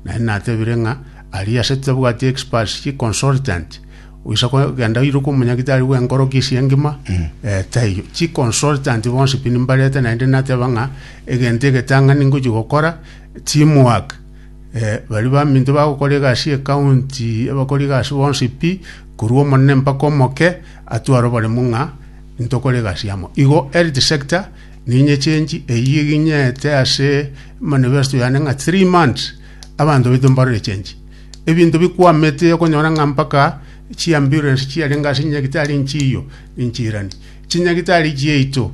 Naende natebire ng'a aria ase tabwati experts ki consultant goisa kogenda oirwe komonyagitari bw'enkoroki esie engima, eh, taiyo. Chi consultant bonsi pi nimbarete naende nateba ng'a egento egetang'ani ngochia gokora team work. Eh, baria baminto bagokora egasi ye county, abakora egasi bonsi pi, korwa omonene mpaka omoke, atware oboremu ng'a ntokore egasi amo. Igo health sector. Ninyechenchi eyio eginyete ase manifesto yane ng'a three months abanto baito mbarore change. Ebinto bikwamete okonyora ng'a mpaka chiambulance chiarenge ase nyagitari nchiyo nchirani. Chinyagitari chiaito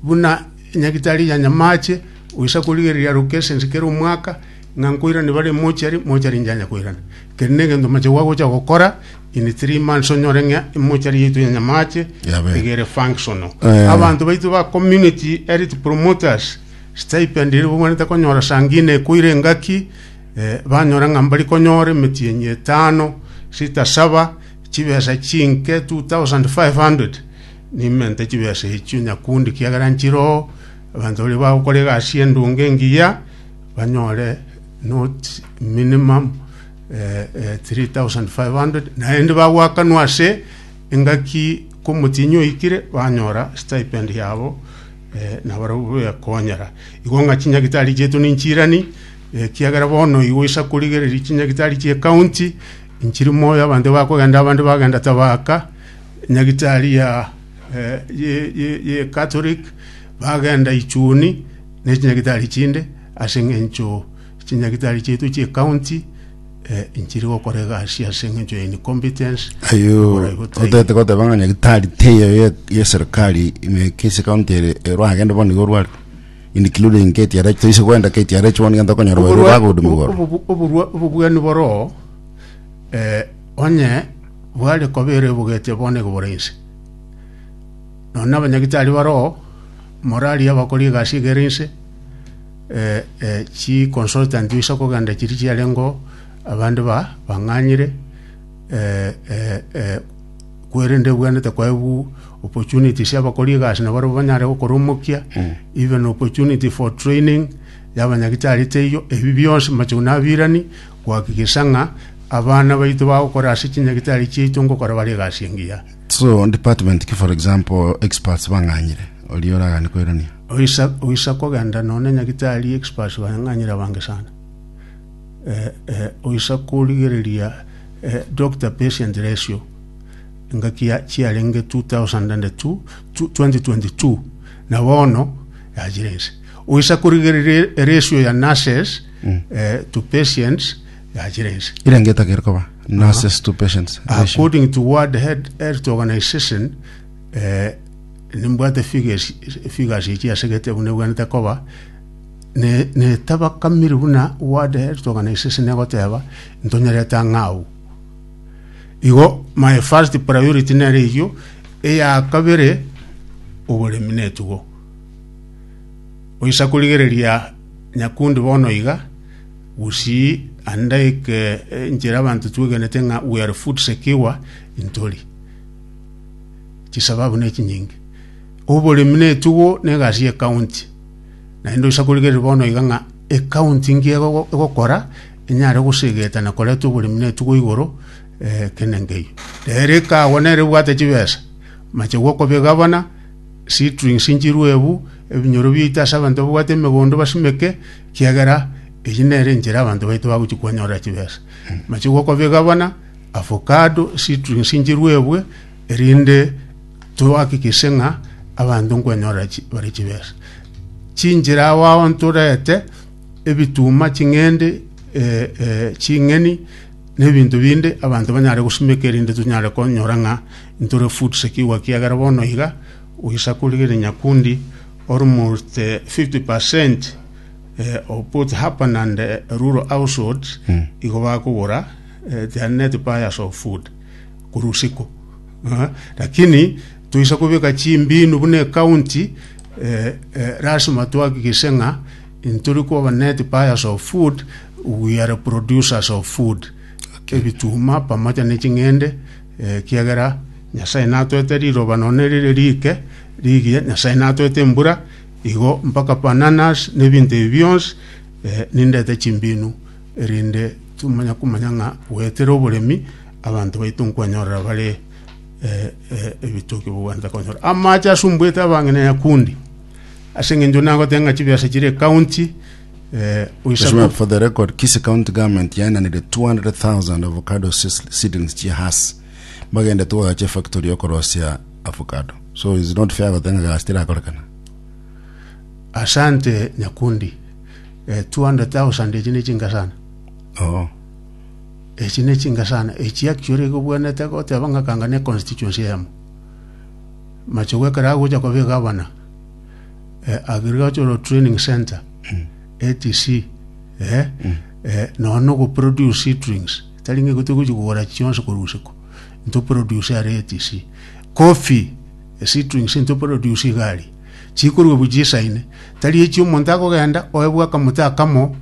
buna nyagitari ya nyamache oisa korigereria aru cases kera omwaka ng'a nkoirani bare mochari, mochari njanya koirana. Keri negento mache gwagocha gokora In three months onyore ng'a emochari yaito ya nyamache Yabe. iga ere functional Eh. abanto baito ba community elite promoters stipend ere bogwanete konyora sangine ekoire engaki eh, banyora ng'a mbari konyora emetienyi etano sita saba chibesa chinke 2500 nimente chibesa echio nyakundi kiagera nchiroo abanto baria bagokora egasi endonge engiya banyore not minimum 3500 naende bagwakanwa ase engaki komotienyi oikire banyora stipend yabo eh, na barabwo bekonyera igo ng'a chinyagitari chietu ninchirani ekiagera bono igo isa korigereria chinyagitari chie county nchiri moyo abande bakogenda abande bagenda tabaka nyagitari ya eh, ye- ye- ye catholic bagenda ichuni ne chinyagitari chinde ase eng'encho Chinyagitari chiaito chie county eh, inchiri gokora egasi ase eng'encho ya incompetence Ayio Oborai botaini. otete goteba ng'a nyagitari teyo ye- ye serikali ime kesi county ere ero agende bono igo orware including KTRH toise kwenda KTRH bono igento okonyora baria Oborwa- bagodumu obo- igoro obo- oborwa- obobwani boroo eh, onye bware koba ere ebogete bono igo bore inse nonya na abanyagitari baroo morari abakora egasi iga ere inse eh, eh, chi consultant isa kogenda chiri chiarengo abande ba bang'anyire eh, eh, eh, kwerende bwenete kwaebu opportunities abakori egasi na barabo banyare gokora omokia even opportunity for training yabanyagitari teiyo ebi bionsi macho nabirani gwakigisa ng'a abana baito bagokora ase chinyagitari chiaito ngokora bare egasi engiya so department ki for example experts bang'anyire oria oragane koirania Oisa, oisa kogenda none nyagitari experts bang'anyire abange sana. Eh, eh, oisa korigereria eh, doctor patient ratio engaki ya chiarenge 2002 tu- 2022 na bono yachire ense. Oisa korigereria ratio ya nurses eh, to patients yachire ense. ere ngetagere koba nurses to patients ratio. According to World Head- Health Organization, eh, Nimbwate efigasi echi ase egetebo nebwenerete koba netabakamiri buna wade eritokana esese negoteba ntonyerete ang'e agwo. Igo my first priority nere eyio, eya kabere oboremi na etugo. Goisa korigereria Nyakundi bono iga, Gusii naende eke enchera abanto twegenete ng'a we are food secure ntori. chisababu ne chinyinge oboremi na etugo na egasi ye county naende oisa korigereria bono iga ng'a ecounty nki ego- egokora enyare gosegeta na koreta oboremi na etugo igoro eh, kende nkeiyo ere ekagwa nere ebwate chibesa machegwa okoba egavana seedlings nchirwe ebu ebinyoro biaito ase abanto babwate emegondo basimeke kiagera eyio nere enchera abanto baito bagochi kwanyorera chibesa machegwa okoba egavana. Avocado citrus nchiruebwe erinde toakikishe ng'a abanto nkwanyora chi- bare chibesa. Chinchera ao ao ntorete ebituma, ching'ende, eh, eh, ching'eni na ebinto binde abanto banyare gosimeka erinde tonyare konyora ng'a ntore food secure ekiagera bono iga oisa korigera Nyakundi almost eh, 50 percent eh, of both urban and eh, rural households igo bakogora eh, they are net buyers of food korwa usiku Ah, lakini toisa kobeka chimbinu buna ekaunti eh, eh, lasima twakikise ng'a ntori koba net buyers of food we are producers of food ebituma pamoja ne ching'ende eh, kiagera nyasaye natwete riroba none rire rike rigie nyasaye natwete embura igo mpaka bananas ne binto ebi bionsi eh, nindete chimbinu erinde tomanye komanya ng'a goetera oboremi abanto baito nkwanyorera bare ebitoki bogwancha konyora amache asumbuete abang'ina nyakundi ase eng'encho nagote ng'a chibiasa chire ekaunti Mheshimiwa, for the record, Kisii County Government yainanire 200,000 avocado seeds- seedlings chia hasi bagendete gogacha efactory yokorosia avocado. So it's not fair gotenga gasi tirakorekana. asante nyakundi Eh, 200,000 echi nechinga sana. Oo. Echi nechinga sana. Echi actually gobwenete goteba ng'a kanga ne constituency eyemo. Machogu ekero agocha koba egavana, eh, agricultural training center, ATC, eh, eh, nono nogoproduce seedlings. Tari ng'a igote gochi kogora chionsi korwa isiko. Ntoproduce are ATC. Coffee, eh, seedlings ntoproduce igari. Chikorua obu chisaine, tari echi omonto akogenda oebwe akamote akamo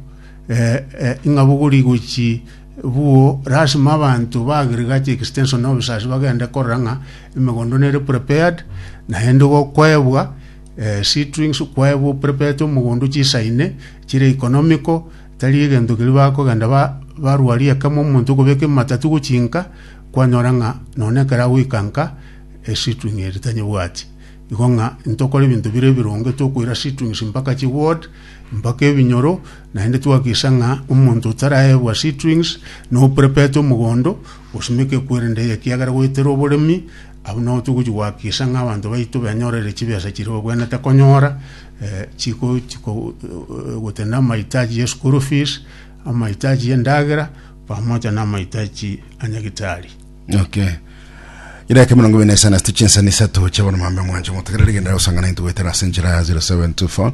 eh, eh, ing'abogori gochi buo lasima abanto ba agriculture extension na officers bagende korora ng'a emegondo nere prepared naende gokoebwa eh, seedlings kwaebwa prepared omogondo chisaine chire economical tari egento keri bakogenda ba barwaria ekemo omonto okobeka ematatu gochinka kwanyora ng'a none ekero agoika nka eseedling eri tanyebwati Igo ng'a intokore ebinto bire ebironge tokoira sitrings mpaka chiword, mpaka ebinyoro, naende twakisa ng'a omonto otaraegwa sitrings noprepete omogondo, osimeke kwerende eye ekiagera goetera oboremi, abwo nabo togochi goakisa ng'a abanto baito benyorere chibesa chiria babwenerete konyora, eh, chiko chiko gotenda amahitaji ye school fees, amahitaji yendagera, pamoja na amahitaji a nyagitari. Okay. Ireke mirongo ibiri na isano ase chinsani isato chia bono mambe mwanche motegere rigenda gosangana intu goetera ase enchera ya 0724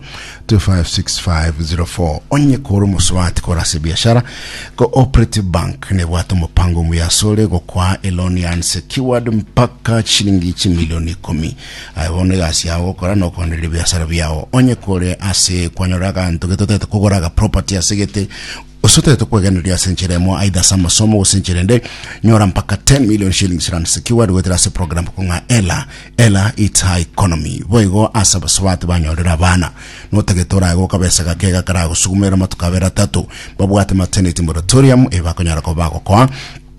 256504 onye kore omosubati kore ase biashara cooperative bank nebwate omopango omuya asore gokwaa eloni ya unsecured mpaka chiringi chimilioni ikumi aye bono egasi yao gokora na okoenderia biashara biao onye kore ase kwanyora aganto getotete kogora aga property ase gete Gose otaete kwegendereria ase enchera emo aidha ase amasomo gose enchera ende, nyora mpaka 10 million shillings rands keyword goetera ase program ko ng'a Ella, Ella it's her economy. Boigo ase abasubati banyorire abana. Notagete orae goka besa gake iga karagosugumerere amatuko abere atato, babwate maternity moratorium eye bakonyara koba bagokoa,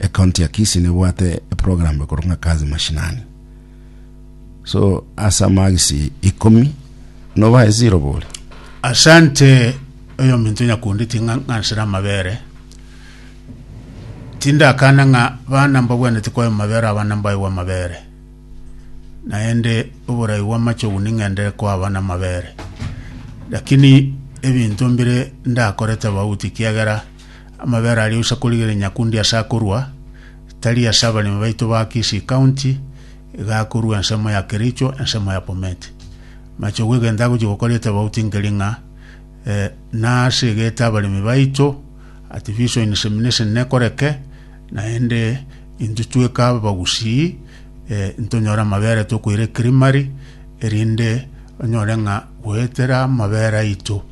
ecounty ya Kisii nebwate eprogram ekorwa ng'a kazi mashinani so ase amagisi ikomi nobae zero bori asante oyominto nyakundetie ng'a ng'ansire amabere tindakana ng'a bana mbabwanete kwayo mabere abana mbaigwa amabere naende oborai bw'amachogu ning'endere kwa abana amabere lakini ebinto mbire ndakorete abauti kiagera Amabera aria oisa korigereria nyakundi ase akorua, tari ase abaremi baito ba Kisii County, iga akorua ensemo ya Kericho, ensemo ya Bomet. Machogu egento agochia gokora etobauti nkeri ng'a eh, nase egete abaremi baito at Viso Insemination nekoreke, naende intwe tweka abagusii eh, ntonyore amabera tokoira ecreamery, erinde onyore ng'a goetera amabera aito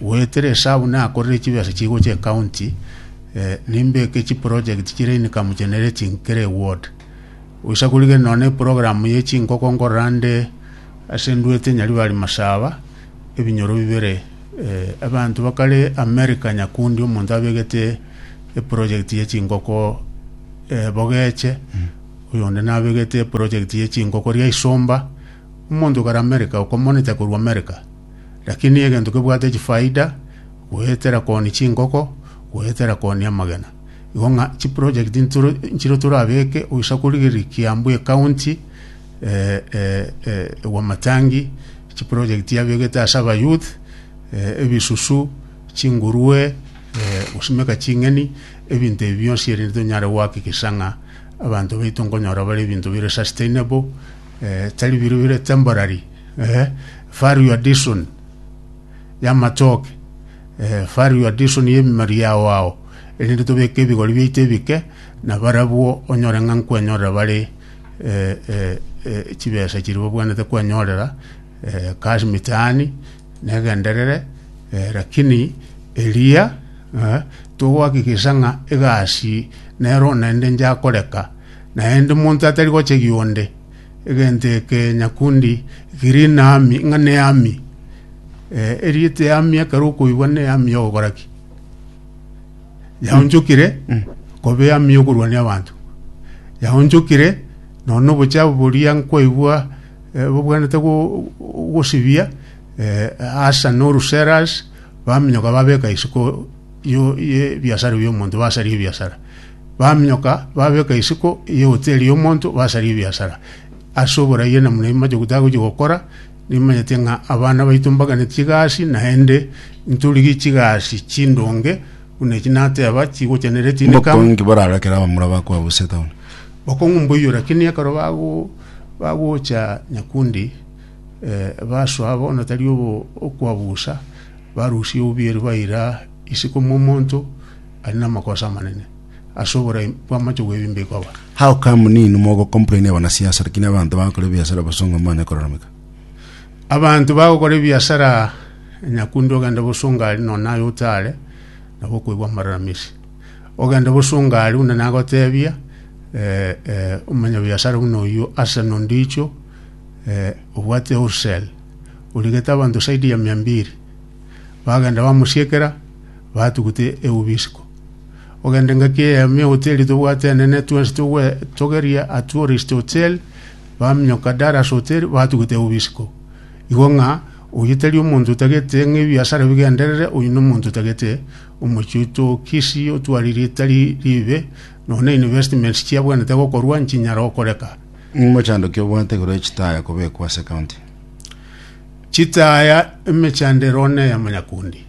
Goetera esabu nakorire chibesa chigocha ecounty, nimbeke chiproject chire income generating kera eward. Goisa korigereria nonya na eprogram ye chinkoko nkorora nde ase Nduete Nyaribari Masaba, ebinyoro bibere. Abanto bakare America Nyakundi omonto abegete eproject ye chinkoko Bogeche, oyonde nabegete eproject ye chinkoko Riaisomba, omonto kare America okomonita korwa America. Lakini egento kebwate chifaida goetera kooni chinkoko, goetera kooni amagena. Igo ng'a chiprojekti ntoro- nchire torabeke oisa korigereria Kiambu ecounty eh, eh, eh, Wamatangi, chiprojekti abegete ase abayouth, eh, ebisusu, chingurue, eh, gosimeka ching'eni, ebinto ebi bionsi erinde tonyare goakikisha ng'a abanto baito nkonyora bare ebinto bire sustainable, eh, tari bire bire temporary eh, value addition y'amatoke eh, value addition y'emimari yao ao erinde tobeke ebigori biaito ebike na barabwo onyore ng'a nkwenyorera bare eh, eh, eh, chibesa chiri babwanete kwenyorera eh, kasi mitaani negenderere eh, lakini eria eh, togohakikisha ng'a egasi nero naende njakoreka Naende monto atari gochegia onde, egento eke nyakundi kiri naami ng'a neami. Erieta eami ekero okoigwa neami ogokora ki? Yaonchokire koba eami yokorwania abanto. Yaonchokire nonya obochabo boria nkwaigwa eh, bobwenerete go- gosibia eh, asa na orusera ase, baminyoka babeka isiko yo- y'ebiasara biomonto, basaria ebiasara. baminyoka, babeka isiko y'ehoteli y'omonto, basaria ebiasara. Ase oboraia na buna imache gotagochia gokora, nimanyete ng'a abana baito mbagane chigasi, naende ntorigie chigasi chindonge, buna echi nateba, chigocha nere Mbokongo tinikama. inki boraro ekero abamura bakoa bose town? Bokongo mboiyo lakini ekero bago bagocha Nyakundi eh, basoa bono tari obo okwabusa, barusia obuya erio baira isiko momonto, Ari namakosa amanene ase oborai bw'amache gw'ebimbe ikoba. How come nini mogo complain abana siasa lakini abanto bagakora ebiasara bosongo mbanye kororomeka? Abanto bagokora ebiasara nyakundi ogende bosongo ari nonye naye otare nabo okoigwa amararamisi. Ogende bosongo ari buna nagotebia eh, eh, omonyabiasara buna oyio Arsenal ndicho eh, obwate wholesale origete abanto saidi ya mia mbiri bagenda bamosiekera batugute eubi isiko. Ogende ngaki eyemo y'ehoteli tobwate enene twensi togwe togerie a Tourist Hotel, baminyoka Dallas Hotel batugute eubi isiko. Igo ng'a oyio tari omonto otagete ng'a ebiasara bigenderere, oyio nomonto otagete omochie oito o Kisii otwari ritari ribe, nonya na investments chiabwenerete gokorwa nchinyara okoreka. Omochandoki obwate igoro ye chitaya kobekwa ase county. Chitaya emechandero ne ya Manyakundi.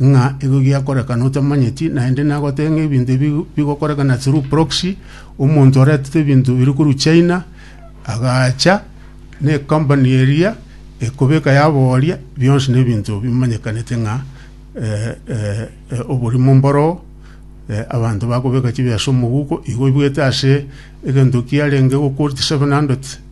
ng'a igo giakorekana otamanyeti, naende nagote ng'a ebinto ebi bigokorekana through proxy, omonto oretete ebinto biri korwa China, agacha ne company eria ekobeka yaboria, bionsi na ebinto bimanyekanete ng'a eh, eh, eh, oborimo mboro eh, abanto bakobeka chibiasha omoguko, igo oibwete ase egento kiarenge go quote 700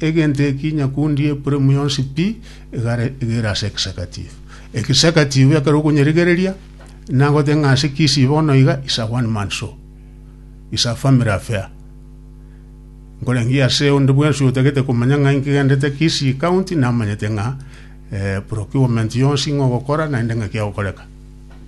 Egento eki nyakundi Epuraimu yonsi pi egare egere ase egesakatifu. Egesakatifu ekero okonyerigereria, nagote ng'a ase Kisii bono iga is a one man show. Is a family affair. Nkorangerie ase onde bwensi otagete komanya ng'a inki egendete Kisii county namanyete ng'a procurement yonsi ng'ogokora naende ng'aki egokoreka.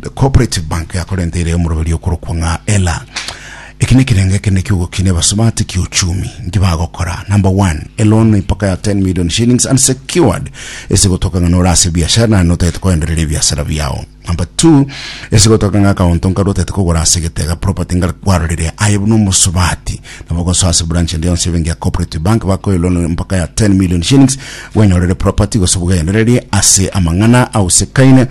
The Cooperative Bank yakorenteire omoroberio okorokwa ng'a Ela. Eki nekerengo ekende ki'ogokina ebasubati ki'uchumi. Nki bagokora? Number one, eloan mpaka ya 10 million shillings unsecured ase gotoka ng'a nore ase ebiashara naende notagete koendereria ebiasara biao. Number two, ase gotoka ng'a akaunto nkaria otagete kogora ase egetega, property nkaria kwarorire aye buna omosubati. Nabo gosoa ase branch ende yonsi y'ebenki ya Cooperative Bank bakoe eloan mpaka ya 10 million shillings bwenyorere property gose bw'ogendererie ase amang'ana ausekaine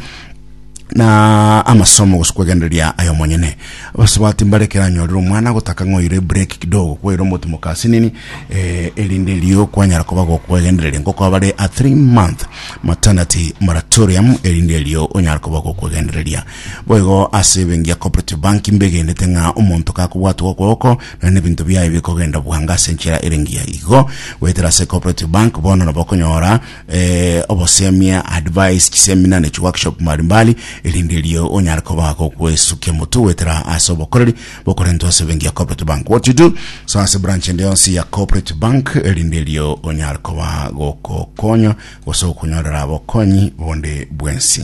na amasomo gose kwegendereria ayo monyene abasubati mbare keranyorire omwana gotaka ng'oire break kidogo kwaire omotimo kasinini eh, erinde rio kwanyara koba gokwegendereria ngoko abare a 3 month maternity moratorium erinde rio onyara koba gokwegendereria boigo ase ebengi ya cooperative bank mbegendete ng'a omonto kakobwatwa okwoko na nebinto biaye bikogenda bwanga ase enchera erengiya igo goetera ase cooperative bank bono nabo okonyora eh, obosemia, advice, chisemina ne chiworkshop mbalimbali, erinde erio onyare koba gokwesukia motu goetera ase obokoreri bokorentwa ase ebenki ya Corporate Bank. What you do, so ase branch ende yonsi ya Corporate Bank, erinde erio onyare koba gokokonywa gose gokonyorera bokonyi bonde bwensi.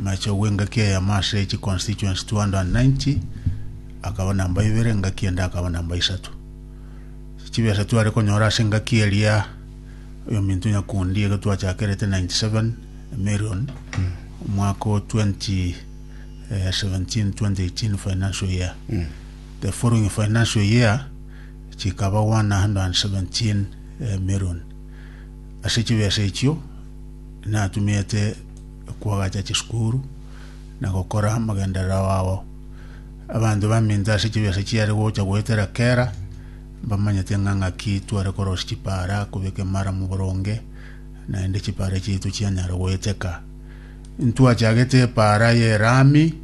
Macho bw'engaki eyemo ase echi constituency 290 akaba namba ibere, engaki ende akaba namba isato. Chibesa tware konyora ase engaki eria oyominto nyakundi ekero twachakerete 97 million omwaka o 2017/2018 financial year. The following financial year chikaba 117 million. Ase chibesa echio Natumete kwagacha chisukuru na gokora amagenderero ao. Abanto baminto ase chibiase chiare gocha goetera kera mbamanyete ng'a ng'aki tware korosia chipara kobeka emaramu boronge, naende chipara chiaito chianyara goeteka. Ntwachagete epara y'erami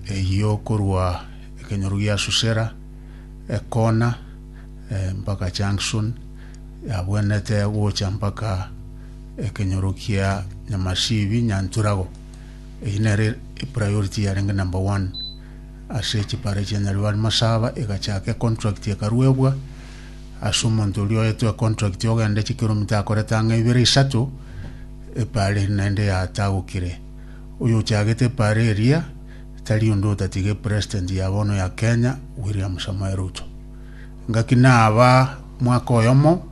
eyio korwa ekenyoro gia Susera, Ekona, mpaka Junction. yabwenerete gocha mpaka ekenyoro kia Nyamashibi Nyanturago. Eyio nere epriority yarenge number one ase chipara chia Nyaribari Masaba egachaka econtract ekaruebwa ase omonto oria oetwe econtract ogende chikiromita akorete ang'e ibere isato epara eri naende yatagokire. Oyo ochagete epara eria tari onde otatiga epresident ya bono ya Kenya William Samoei Ruto. Gaki naba mwaka oyomo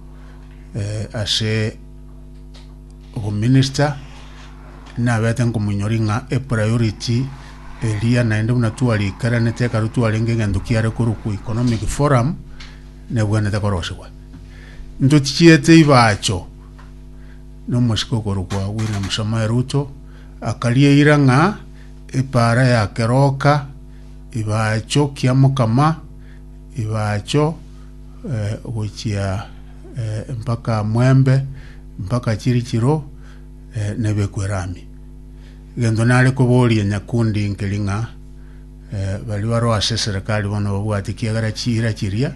ase obominister, nabete nkomonyoria ng'a epriority eria naende buna twariikeranete ekero twarenge egento kiare korokwa economic forum, nebwenerete korosegwa. Ntochiete Ibacho na omosike okorokwa William Samoei Ruto, akaria eira ng'a epaara ya keroka, Ibacho kiamokama, ibacho eh, gochia eh, mpaka mwembe mpaka chiri chiro eh, nebekwerami egento nare koboria nyakundi nkeri ng'a eh, bari baro ase serikali bono babwati kiagera chira chiria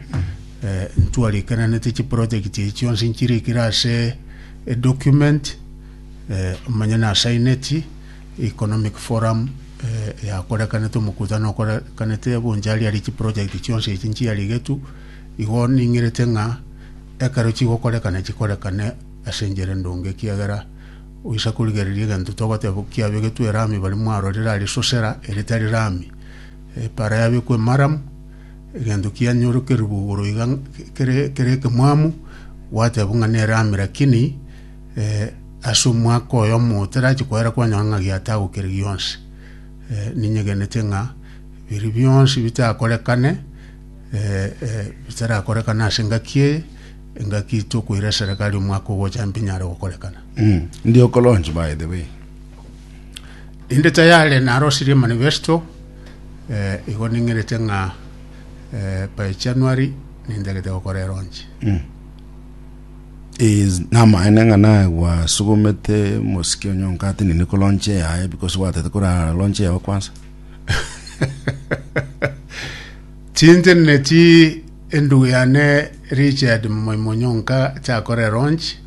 eh, ntwarikananete chiproject echi chionsi nchirikire ase edocument eh, omanye nasaineti Economic Forum eyakorekanete, omokutano okorekanete bonchariari chiproject chionsi echi nchiarigetwe, igo ning'erete ng'a ekero chigokorekana chikorekane ase enchera endonge ekiagera oisa korigereria egento togoteba kiabegetwe erami baria mwarorire aria sosera ere tari rami, epara yabekwa emaramu, egento kianyorokerigwa igoro iga kere ekemwamu gwatebwa ng'a nerami lakini. Eh, ase omwaka oyomo otarachia koera kwanyora ng'a giatagokire gionsi. Eh, ninyegenete ng'a biri bionsi bitakorekane, eh, eh, bitarakorekana ase engaki eye, engaki tokoira eserekari omwaka ogocha mbinyare gokorekana. Mm. Ndi okolonch by the way. Inde tayare narosirie manifesto eh, igo ning'erete ng'a eh, by January nindagete gokora eronchi. Mm. Is, namaene ng'a naye gwasugumete mosike onye onkate nini ko lonche yaye because gwatete korara lonche yao kwansa chinche nechi endugu yane richard moimonyo onka chakore ronchi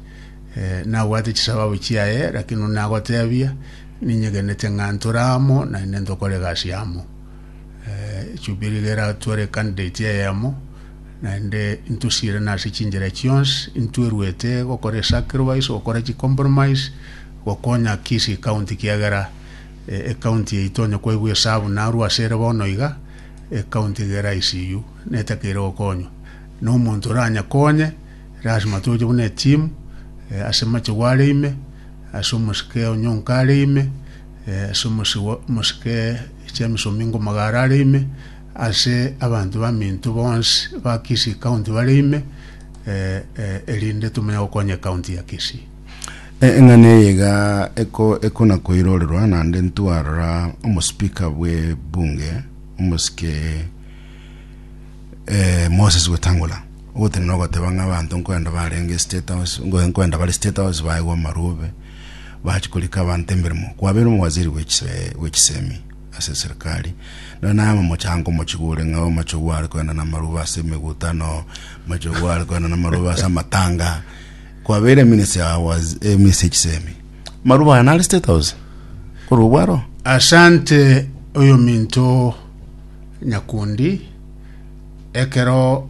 eh, nabwate chisababu chiaye lakini nagotebia ninyegenete ng'a nturamo naende ntokore egasi yamo Echubiri eye eratwerekanire etia eyemo, naende intosiire nase chinchera chionsi, intweruete gokora esacrifice, gokora chicompromise, gokonya Kisii County kiagera ecounty yaito onye kwaigwa esabu narwo asere bono iga, ecounty iga ere ICU netakeire gokonywa. Na omonto oranyekonye, lasima toche buna eteam, ase machegu are ime, ase omosike onye onka are ime, Ase omosibwa omosike James Omingo Magara are ime ase abanto baminto bonsi ba Kisii County bare ime erinde tomonye gokonya ecounty ya Kisii. Eng'ana eye iga eko ekona koirorerwa naende ntwarora omospeaker bwe bunge omosike Moses Wetangula ogotenena ogoteba ng'a abanto nkwenda barenge state house nkwenda bare state house baegwe amarobe. bache korika abanto emeremo, kwabeire omowaziri bwe chisemi ase eserikari, na naye omochango omochigure ng'a amachogu are kogenda namaroba ase emegutano, amachogu are kogenda namaroba ase amatanga, kwabeire eminisi ya eminisi ya chisemi. Maroba aya nare State House, korwa obwaro. Asante oyominto Nyakundi, ekero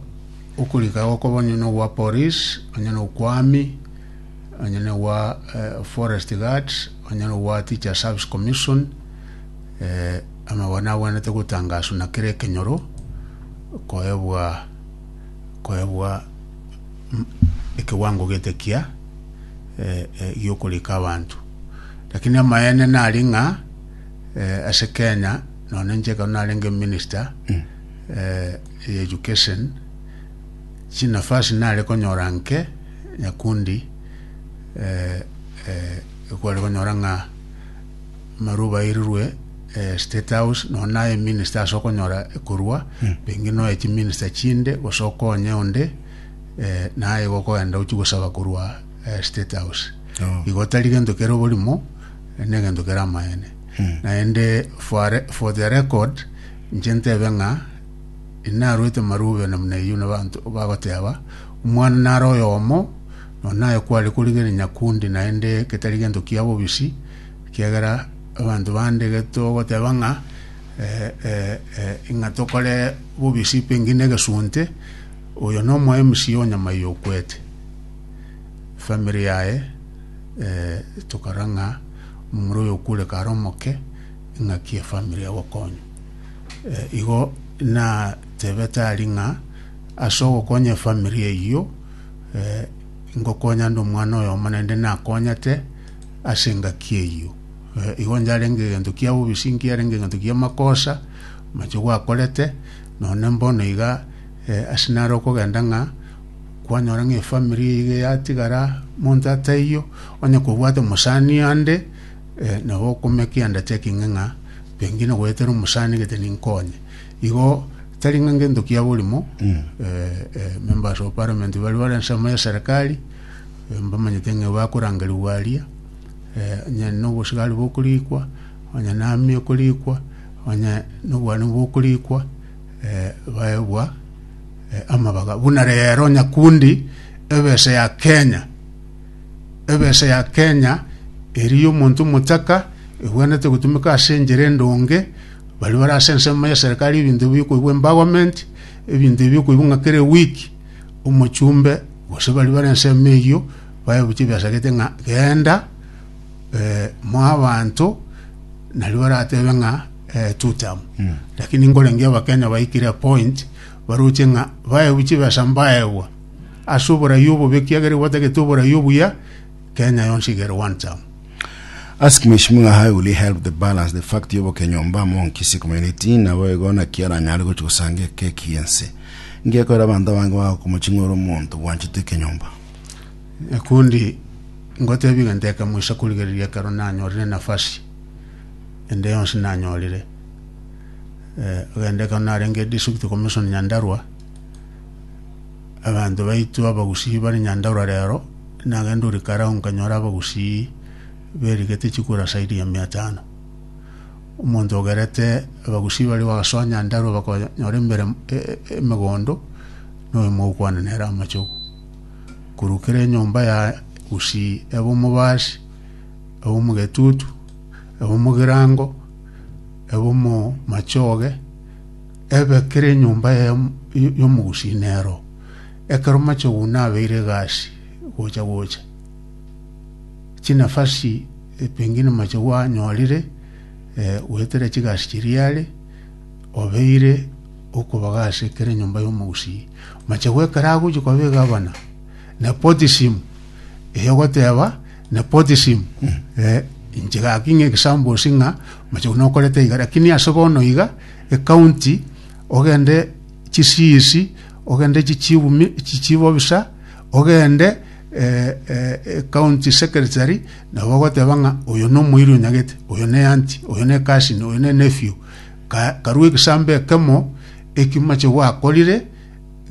okorika gokobonye nogwa poris onye nokwami. Onye ne gwa forest guard, onye ne gwa teacher service commission, amabwani agwenerete gotangaswa na kera ekenyoro koebwa koebwa ekewango gete kia giokorika abanto. Lakini amaene nari ng'a ase Kenya nonye inche ekero narenge minister ye education, Chinafasi nare konyora nke nyakundi ekware konyora ng'a amarwa bairirwe State House nonya naye minister ase okonyora ekorwa pengine nonya chiminister chinde gose okonye onde naye igo okogenda gochia gosaba korwa State House. Igo tari gento kere oborimo naende egento kere amaene naende for the record inche ntebe ng'a. Inarwete marubena buna eyio nabanto bagoteba, Omwana nare oyomo, nonya naye kware korigereria nyakundi, naende getari gento kia bobisi, ekiagera abanto bande getogoteba ng'a eh, eh, eh, ng'a tokore bobisi pengine egesunte, oyo nomoemisi o nyama eyio okwete. Family yaye eh, tokora ng'a omomura oyo okwire kare omoke, ing'aki efamily egokonywa. Eh, igo natebete ari ng'a ase ogokonya efamiri eyio eh, ngokonya nde omwana oyomo naende nakonyete ase engaki eyio Eh, igo yarenge egento kia bobisi nkiarenge egento kia makosa mache gwakorete none mbono iga eh, ase nare okogenda ng'a kwanyora ng'a efamiri iga yatigara monto ataiyo onye kobwate mosani ande Eh, na gokumia ki'undertaking ng'a pengine goetera omosani gete ninkonye. Igo tari ng'a ngento kia borimo, eh, eh, members of parliament bari bare ensemo ya serikali, eh, mbamanyete ng'a bakorangerigwa aria, eh, onye nobosigari bokorikwa, onye nami okorikwa, onye nobwani bokorikwa, eh, baebwa eh, amabaga. Buna rero nyakundi ebesa ya Kenya, Ebesa ya Kenya eria y'omonto omotaka egwenerete gotumeka ase enchera endonge, baria bare ase ensemo ya serikari ebinto ebi bikoigwa empowerment, ebinto ebi bikoigwa ng'a kera eweek omochumbe gose baria bare ensemo eyio bae gochia ebesa gete ng'a genda mo abanto nario baratebe ng'a two term. Lakini nkorengerie Abakenya baikire point baroche ng'a bae gochia ebesa mbaegwa ase oborai obobe ekiagera igo batagete oborai obuya Kenya yonsi igere one term Ask Mheshimiwa how will he help the balance the fact yobo kenyomba amo Nkisi community nabo igo naki aranyare gochi gosanga ekeki yense ngekorera abanto abange bagokoma ching'uru omonto bwanchete ekenyomba Ekundi ngotebi ng'a nteka moisa korigereria ekero nanyorire enafasi ende yonsi nanyorire eh, agende ekero narenge district commission Nyandarua Abanto baito abagusii bare Nyandaura rero, nagende ore kare ao nkanyora abagusii berigete chikura saidi ya mia tano. Omonto ogerete abagusii baria bagasoa Nyandarua bakonyora embere emegondo na oyomo ogokwana nere amachogu. Korwa kera enyomba ya gusii ebe omobasi, ebe omogetutu, ebe omogirango, ebe omomachoge, Ebe kera enyomba y'omogusinero, ekero machoguna abeire egasi gocha gocha, chinafasi pengine machogu anyorire goetera chigasi chiria are, obeire okobaga ase kera enyomba y'omogusii. Machogu ekero agochia koba egavana, nepotism eyogoteba nepotism inche gaki ng'a examples ng'a machogu nokorete iga, lakini ase bono iga. ekaunti, ogende chisiisi, ogende chichiumi, chichibobisa, ogende eh, eh, ekaunti secretary, nabo ogoteba ng'a oyo nomoiri onyagete, oyo ne anti, oyo ne cousin, oyo ne nephew. Ka, karue egesambo ekemo eki mache gwakorire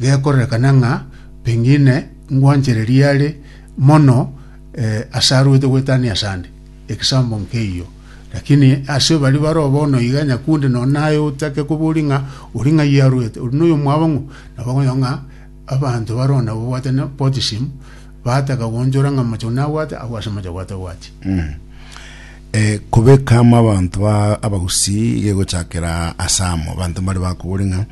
gekorerekana ng'a pengine ngwanchereria are mono eh, ase aruete goetania asande. egesaambo nk'eyio. Lakini ase baria baroo bono iga nyakunde nonya naye otake koboria ng'a ori ng'ai arwete, ori noyomwabo ng'o, na bakonyora ng'a abanto baroo nababwate na baptism, bataka goonchora ng'a mochie buna abwate agwo ase mochie buna tabwati. Eh, kobeka amo abanto ba Abagusii iga egochakera ase amo, abanto mbare bakoboria ng'a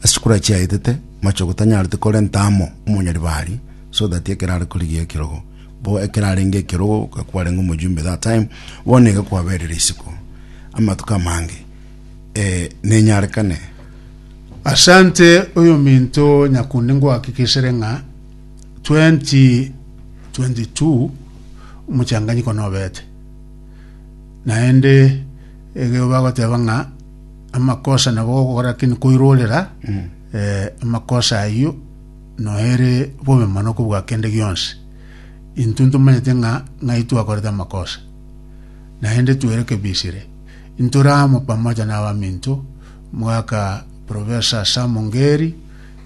ase chikura chiaetete, mochie gotanyarete korenta amo omonyaribari, so that ekero are korigia ekerogo. Bo ekero arenge ekerogo ka kwarenge omojumbe that time, bono iga kwaberire isiko amatuko amange, eh, nenyarekane. Asante oyominto nyakundi ngohakikisere ng'a 2022 omochanganyiko nobete naende ekero bagoteba ng'a amakosa nabo ogokora lakini koirorera eh, amakosa ayio Noere bobe mono kobua kende gionsi. Intwe ntomanyete ng'a ng'ai twakorete amakosa, naende twere kebisire. Intore amo pamoja n'abaminto mwaka Professor Sam Ngeri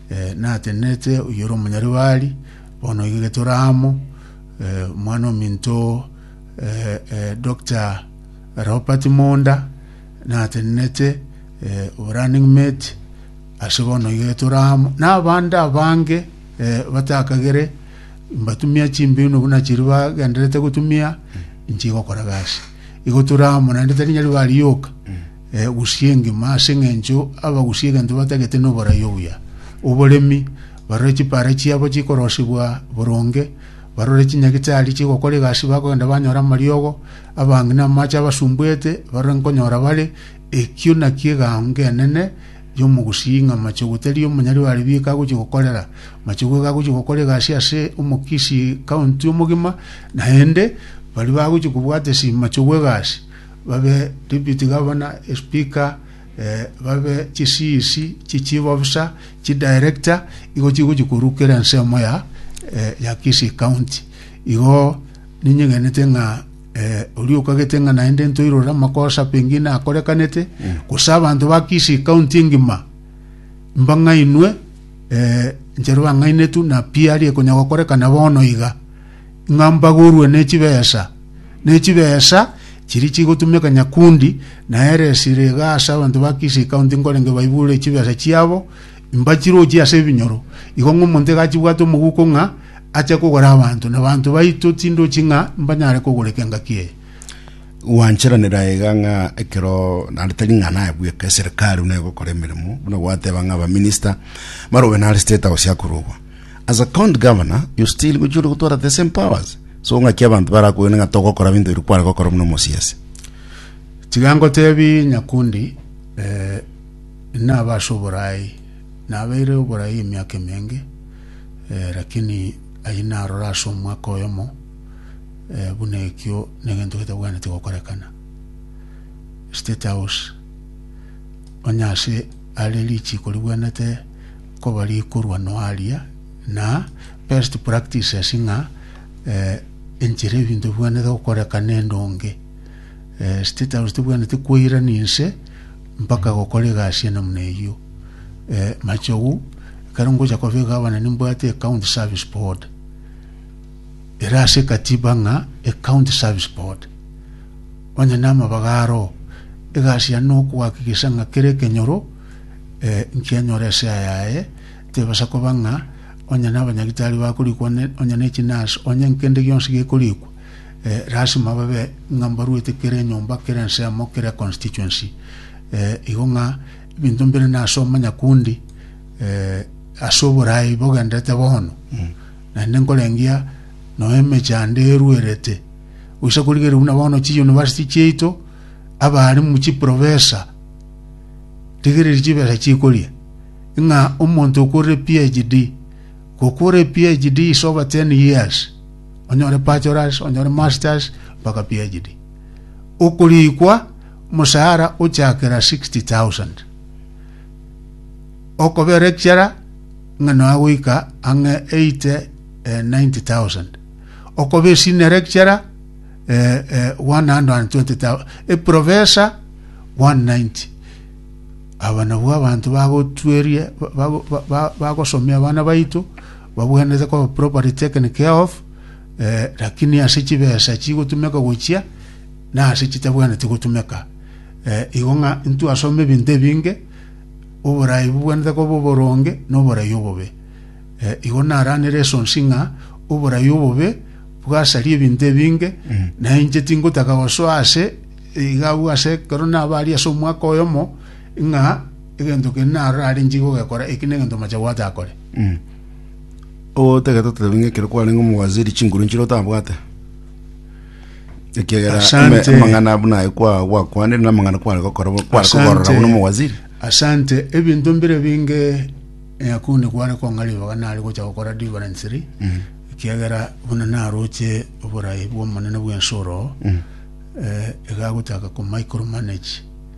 eh, natenenete oyore omonyaribari bono iga getore amo eh, omwana ominto eh, eh, Dr. Robert Munda natenenete eh, running mate Ase bono iga etore amo nabande abange eh, batakagere mbatumia chimbino buna chiri bagenderete gotumia inche igokora gasi igo tore amo naende tari nyari barioka eh, gusia engima ase eng'encho abagusia egento batagete noborai obuya oboremi barore chipara chiabo chikorosibwa boronge barore chinyagitari chigokora egasi bakogenda banyora amariogo abange na amache abasumbuete barore nkonyora bare Ekio nakio egaango enene y'omogusii ng'a machogu tari omonyari wa ribiiko agochia gokorera. Machogu iga agochia gokora egasi ase omokisii county omogima, naende baria bagochia kobwata ase machogu egasi babe deputy governor, speaker, babe chi CEC, chi chief officer, chi director, igo chigochia korukera ensemo ya Kisii county. Igo ninyegete ng'a. Oria okagete ng'a naende ntoirore amakosa pengine akorekanete, gose abanto ba Kisii county engima mbang'ainwe eh, nchero bang'ainetu na pi aria ekonya gokorekana bono iga, ng'a mbagorwe ne chibesa ne chibesa chiria chigotumeka Nyakundi, na ere esira iga ase abanto ba Kisii county nkorenge baibure chibesa chiabo, Mbachirochie ase ebinyoro, igo ng'omonto egachibwate omoguko ng'a ache kogora abanto, na abanto baito tindochi ng'a mbanyare kogora ekengaki eye. Gwancheranera aiga ng'a ekero naende tari ng'a naye bweka eserikari buna egokora emeremo buna gwateba ng'a abaminista barobe nare state house akorogwa as a county governor you still gochia ore gotwara the same powers so ng'aki abanto barakogene ng'a togokora ebinto ebi kware gokora buna omosiasi Tiga ngotebi Nyakundi, eh, Nabe ase oboraai. Nabeire oboraai emiaka emenge, lakini ayio narore ase omwaka oyomo buna ekio negento getabwenereti gokorekana. State House, onye ase are richiko ribwenerete koba rikorwa no aria, na best practices ng'a enchera ebinto bibwenerete gokorekana endonge. State House tebwenereti koirania inse Mpaka gokora egasi ende buna eyio. Machogu, ekero ngocha koba egavana nimbwate ecounty service board. Ere ase ekatiba ng'a ecounty service board. Onye namabaga aro, egasi yane nokoakikisha ng'a kera ekenyoro nkianyora esea yaye, tebasa koba ng'a onye nabanyagitari bakorikwa onye ne chinurse, onye nkende gionsi gekorikwa, lasima babe ng'a mbaruete kera enyomba, kera ensemo, kera econstituency, eh, igo ng'a ebinto mbire na ase omonyakundi eh, ase oboraai bogenderete bono naende nkorengia noe emeche ande eruerete goisa korigeria buna bono chiuniversity chiaito abaarimu chiprofesa rigereria chibesa chikoria ng'a omonto okorire phd gokore phd is over 10 years onyore Pachoras, onyore Masters, mpaka PhD. Okorikwa omosaara ochakera 60,000. Okobe lecturer ng'a nonya goika ang'e 80 eh, 90,000. Okobe senior lecturer eh, eh, 120,000. E professor 190 aba nabwo abanto bagotwerie ba- ba- ba- bagosomia abana baito Babuanerete koba property taken care of, lakini ase chibesa chigotumeka gochia, na ase chitabwenereti gotumeka. Igo ng'a intwasome ebinto ebinge, oborai bobwenerete koba oboronge, na oborai obobe. Igo naranere esonsi ng'a oborai obobe bwasaria ebinto ebinge, na inche tingotaka gosoa ase iga abwo ase ekero nabaria ase omwaka oyomo, ng'a egento kende narore are inche igogekora, eki negento omochabo atakore. O tagete otebi ng'a ekero kwarenge omowaziri chinguru nchire otabwate ekiagera Asante. ame- amang'ana buna aye kwa- gwakwanire na amang'ana kware gokora bo- kware kogorora Asante. buna omowaziri Asante, ebinto mbire binge nyakunde kware kong'a ribaga nare gocha gokora deliverance ri ekiagera buna naroche oborai bw'omonene bw'ensoro eh, iga agochaka ko micro manage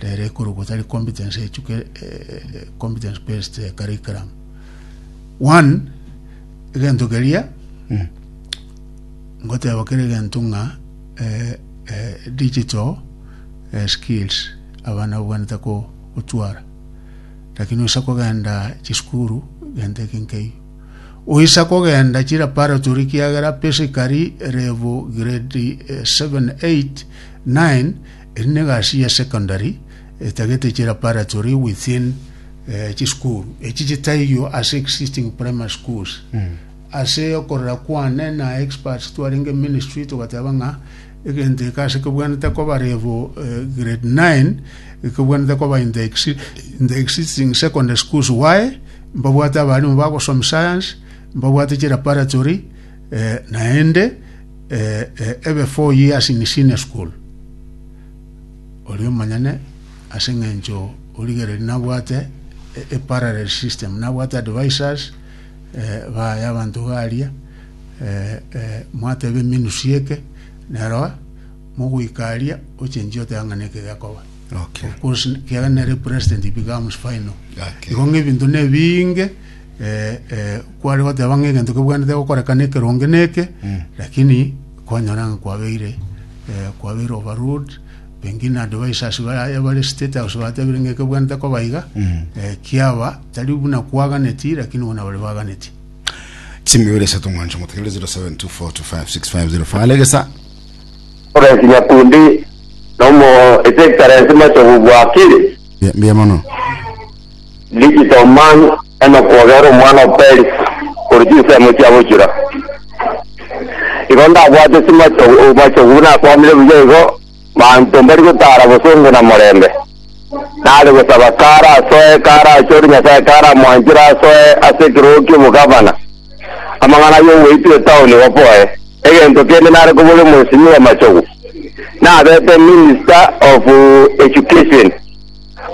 Rero ekorokwa tari competence echuka eh, eh, competence based eh, curriculum one egento keria ngoteba kere egento ng'a eh, eh, digital eh, skills abana babwanete ko- gotwara lakini oisa kogenda chisukuru gento eke nkeiyo oisa kogenda chilaboratory kiagera basically level grade eh, 7 8 9 Eri negasi ya secondary etagete chilaparatory within eh, chisukuru echi chitaiyo ase existing primary schools ase okorera kwane na experts twarenge ministry togateba ng'a egento eke ase kebwanete koba level eh, grade 9 ekebwanete koba in the, exi- in the existing secondary schools why mbabwate abarimo bagosoma science mbabwate chilaparatory Eh, naende eh, eh, ebe four years in senior school ori omonyene ase eng'encho origereri nabwate e- e parallel system nabwate advisors eh, baya abanto garia eh, eh, mwateba emenusi eke nerwa mogoikaria ochenchi oteba ng'a neke gekoba Okay. Of course, kiaga nere president becomes final Okay. igo ng'ebinto nebinge Ee, ee, kware goteba ng'a egento kebwenerete gokoreka nekeronge neke lakini kwanyora ng'a kwabeire eh, kwabeire overruled pengine advisors ba- bare state house batebire ng'a ekebwenerete koba iga eh, kiaba tari buna kwaganeti lakini bona bare baganeti Simu ibere isato mwancho motegere 0724256505. Alegesa. Florence Nyakundi nomo His Excellency Machogu Bwakili Mbe- Mbe mono. Digital man Enock ogere omwana o Peris korwa chinsemo chia bochura. Igo ndabwate chimachogu machogu nakwamire buya igo manto mbari gotara bosongo na morembe. Nare gosaba kara asoe kara achore Nyasaye kara amwanchire asoe ase ekerogo ki'obogavana. Amang'ana y'ogoitwa etaoni baboe. Egento kende nare kobori omoisinyi bw'amachogu. Nabete minister of education.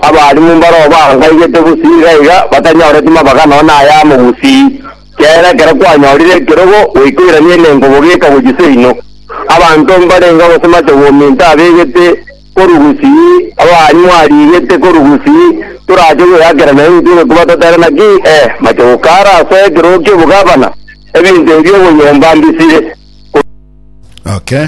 Abaalimu mbarabwo baangaigete gusii iga iga, batanyoreti mabaga nonya ayamo gusii. Kiagera ekero kwanyorire ekerogo, goikoirania elengo bogeka gochia seino. Abanto mbarenge gose mache gominto abegete korwa gusii, abaalimu arigete korwa gusii, torache gweakera naye intwe iga koba totere naki? Eh, mache gokara ase ekerogo ki'obogabana, ebinto ebi ogoyomba mbisire. Okay.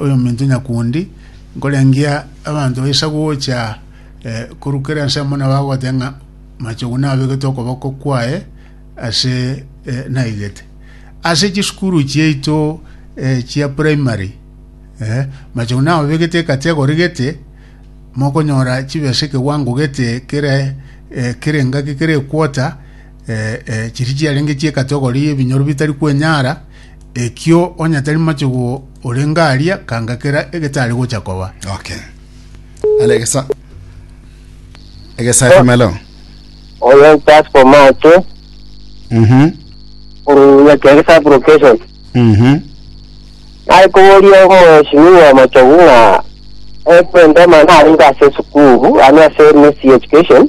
oyominto nyakundi, nkorengia abanto baisa gocha korwa kera ensemo na bagoteba ng'a Machogu nabegete okoboko kwaye ase naigete. Ase chisukuru chiaito chia primary Machogu nababegete ekati egorigete mokonyora chibesa ekewango gete kere kera engaki kera equota Eh, eh, chiria chiarenge chi'ekatogori y'ebinyoro bitari kwenyara, ekio onye tari machugu orenge aria, kanga kera egetari gocha koba. Okay. Ale egesa. Egesa FM hello. Oyo pass for March, Mhm. uruya kenge sub location. Mhm. Nari kuboria mheshimiwa Machogu ng'a ekwendema naringa ase sukuru, ani ase MSc education.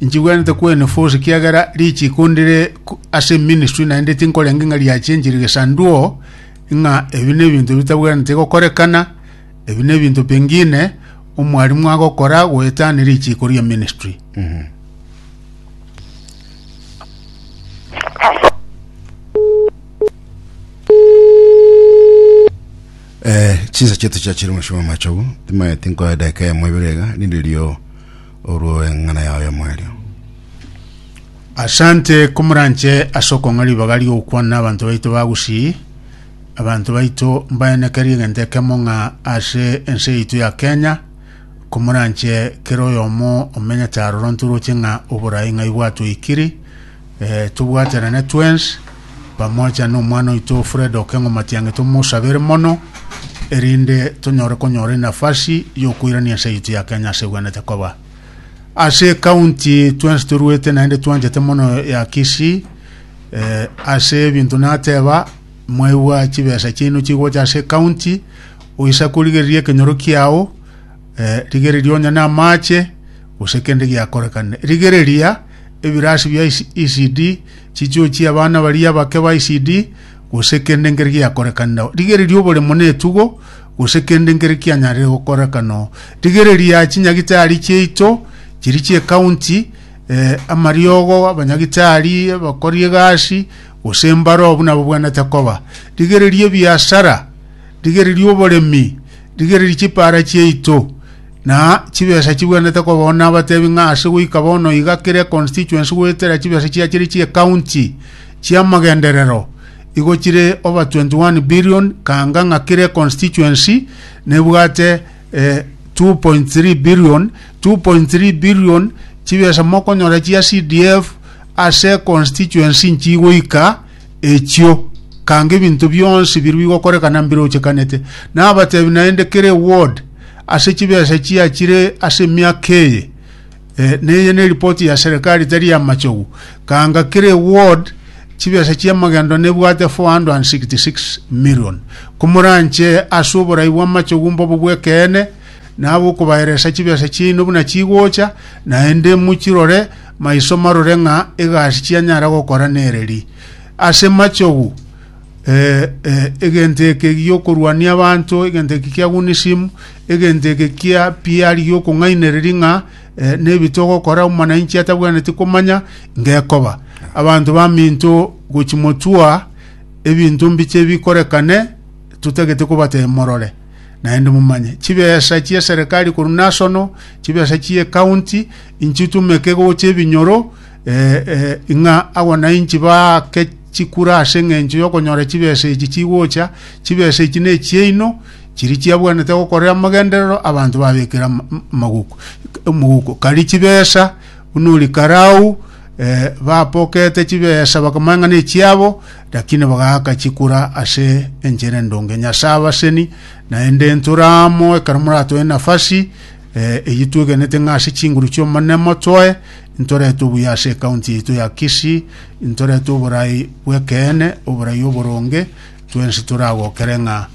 Inchigwenerete kw'Enefose, ekiagera richiko ndire ase eministri, naende tinkorenge ng'a riachenchire gesanduo, ng'a ebi nebinto bitabwenerete gokorekana, ebi nebinto pengine omwarimu agokora goetania richiko ria ministri. Eh, chinsa chetu chiachire omochie bwa amachogu timanyeti nkoya edageka eyemo ibere iga nindirio orw'eng'ana yao y'omoerio. Asante komoranche ase okong'a ribaga rigokwana na abanto baito ba Gusii. Abanto baito mbaenekerie egento ekemo ng'a ase ense yaito ya Kenya komoranche kera oyomo omenyete aroro ntoroche ng'a oborai ng'ai bwatoikiri Ee, tobwaterane twensi, pamoja n'omwana oito Fred Okeng'o Matiang'i tomosabere mono, erinde tonyore konyora enafasi y'okoirania ense yaito ya Kenya ase ebwenerete koba. Ase ekaunti twensi toruete naende twanchete mono ya Kisii, eh, ase ebinto nateba mwaigwa chibesa chiaino chigocha ase ekaunti oisa korigereria ekenyoro kiao eh, rigereria onye na amache gose kende giakorekane rigereria Ebiraasi bia Isidi, chichuo chi'abana baria abake ba Isidi, gose kende nkere giakorekana nao. Rigereria oboremo na etugo, gose kende nkere kianyarire gokoreka nao. Rigereria chinyagitari chiaito, chiria chi'ekaunti, eh, amariogo, abanyagitari, abakori egasi, gose mbaroo buna babwenerete koba. Rigereria ebiasara, rigereria oboremi, rigereria chipaara chiaito, Na chibesa chibwenerete kobaao nabatebi ng'a ase goika bono iga kera econstituency goetera chibesa chia chire chi'ecounty chi'amagenderero igo chire over 21 billion kaanga ng'a kera econstituency nebwate eh, 2.3 billion 2.3 billion chibesa mokonyora chia CDF ase constituency nchigoika echio, kanga ebinto bionsi biria bigokorekana mbirochekanete. Nabatebi naende kera eward ase chibesa chiachire ase emiaka eye eh, neye ne ripoti ya serikali tari ya machogu kanga kera eward chibesa chia magendo nebwate 466 million komoranche ase oborai bwa machogu mbobo bw'ekeene nabo okobaeresa chibesa chiaino buna chigocha naende mochirore Maiso marore ng'a egasi chianyara gokora nereri. Ase machogu, eh, eh, egento eke giokorwania abanto, egento eke kia Gunism, egento eke kia PR giokong'ainereri ng'a eh, nebi togokora omonainchi atabwaneti komanya ngekoba. Abanto baminto gochimotua ebinto mbiche bikorekane totagete kobatebia morore. Naende momanye, chibesa chi'eserekari korwa nasono, chibesa chi'ecounty, inchitumeke gocha ebinyoro, eh, eh, ng'a agwo nainchi baake chikura ase engencho y'okonyora chibesa echi chigocha, chibesa echi nechiaino, chiri chiabwanete gokorera amagenderero abanto babekera ama- m- maguko, omoguko. Kari chibesa buna ori karau, eh, bapokete chibesa bakamanya ng'a nechiabo, Lakini bagaaka chikura ase enchera endonge. Nyasae abaseni, naende intwe amo ekero moratoe nafasi eh, eyio twegenete ng'a ase chinguru chi'omone motoe intorete obuya ase ekaunti yaito ya Kisii intorete oborai bw'ekeene oborai oboronge twensi toragokere ng'a